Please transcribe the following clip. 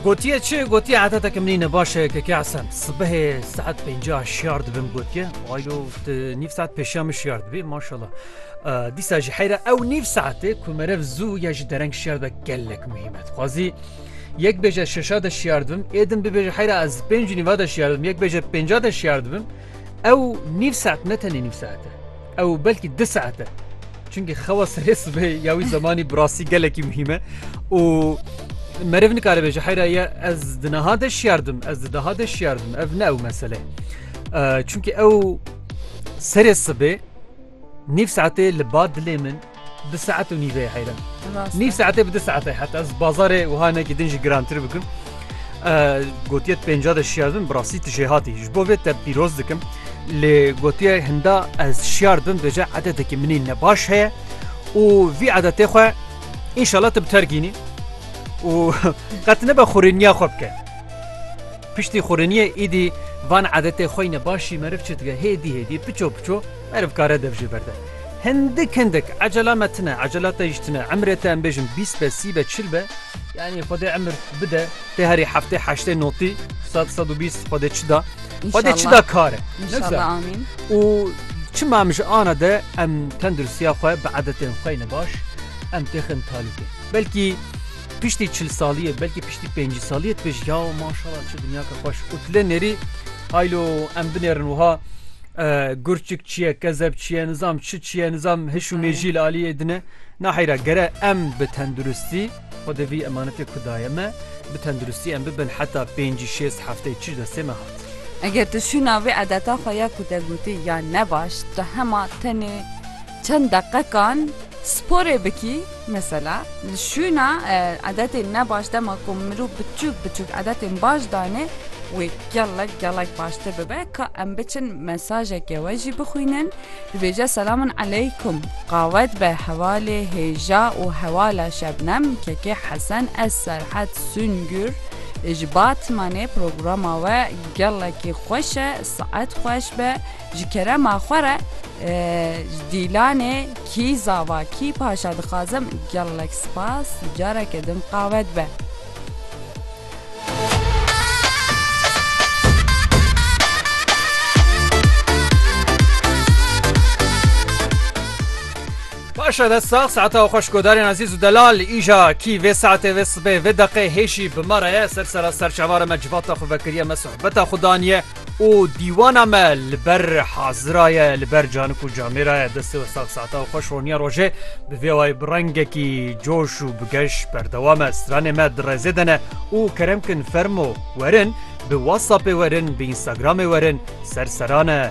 Gotiye çi? Gotiye etetek min ne baş e ke asem. Sibehê saet pêncîya şiyar dibim gotiye. Aylo nîv saet pêşiya min şiyar dibî maşallah. Dîsa jî heyra ew nîv saetê ku merev zû ya ji dereng şiyar dibe gelek muhîm e. Dixwazî yek bêje şeşa de şiyar dibim, êdim bibêje heyra ez pêncî nîva de şiyar dibim, yek bêje pênca de şiyar dibim. Ew nîv saet ne tenê nîv saet e. Ew belkî du saet e. Çunkî xewa serê sibê ya wî zemanî birastî gelekî muhîm e û meriv nikaribe ji heyra ye ez di niha de şiardim ez di daha de şiardim ev ne ew mesele çunkî ew serê sibê nîv saetê li ba dilê min Di saet û nîveyê heyran. Nîv saetê bi di saetê heta ez bazarê wiha nekî din jî girantir bikim. Gotiye pênca de şiyar bim bi rastî tu jê hatî. Ji bo vê te pîroz dikim. Lê gotiye hinda ez şiyar bim dece edeteke minî ne baş heye û vî edetê xwe înşala tu bi terkînî û qet nebe xurêniya xwe bike. Piştî xurêniye îdî van edetê xwe ne başî meriv çi dike hêdî hêdî piço piço Meriv kare dev jê berde. Hindik hindik, ecela me tune, ecela te jî tune. Emrê te em bêjin bîst be, sî be, çil be. Yanî Xwedê emir bide, tê herî heftê, heştê, notî, sed, sed û bîst Xwedê çi da. Xwedê çi da kare. Nigza. Û çima em ji ana de em tenduristiya xwe bi edetên xwe ne baş em têxin talûkê. Belkî piştî çil saliyê, belkî piştî pêncî saliyê dibêjî yaw maşala çi dinyake xweş û tu lê nêrî haylo em binêrin wiha Gurçik çiye, kezeb çiye, nizam çi çiye, nizam hiş û mêjî li aliyê dine. Naheyra gere em bi tenduristî xwe di vî emanetê ku daye me bi tenduristî em bibin heta pêncî şêst hefteyê çi ji destê me hat. Eger tu şûna vê edeta xwe ya ku te gotî ya ne baş, tu hema tenê Çend deqekan sporê bikî mesela li şûna edetên ne baş dema ku mirov biçûk biçûk edetên baş danê wê gelek gelek baştir bibe ka em biçin mesajeke we jî bixwînin dibêje selamun eleykum qawet be hevalê hêja û hewala şebnem kekê hesen ez serhet sûngûr ji batmanê programa we gelekî xweş e saet xweş be Ji kerema xwe re ji Dîlanê Kî Zava Kî Paşa dixwazim gelek spas careke din qave dibe. Paşa dest sax saeta xweş godarên azîz û delal îja kî vê saetê vê sibê vê deqê hêşî bi me re ye ser sera serçavara me civata xwe vekiriye me sohbeta xwe daniye û dîwana me li ber hazira ye li ber canik û camêra ye destê we sax saeta û xweş roniya rojê bi vê wayî bi rengekî coş û bi geş berdewam e stranê me di rezê de ne û kerem kin fermo werin bi whatsappê werin bi instagramê werin ser seran e.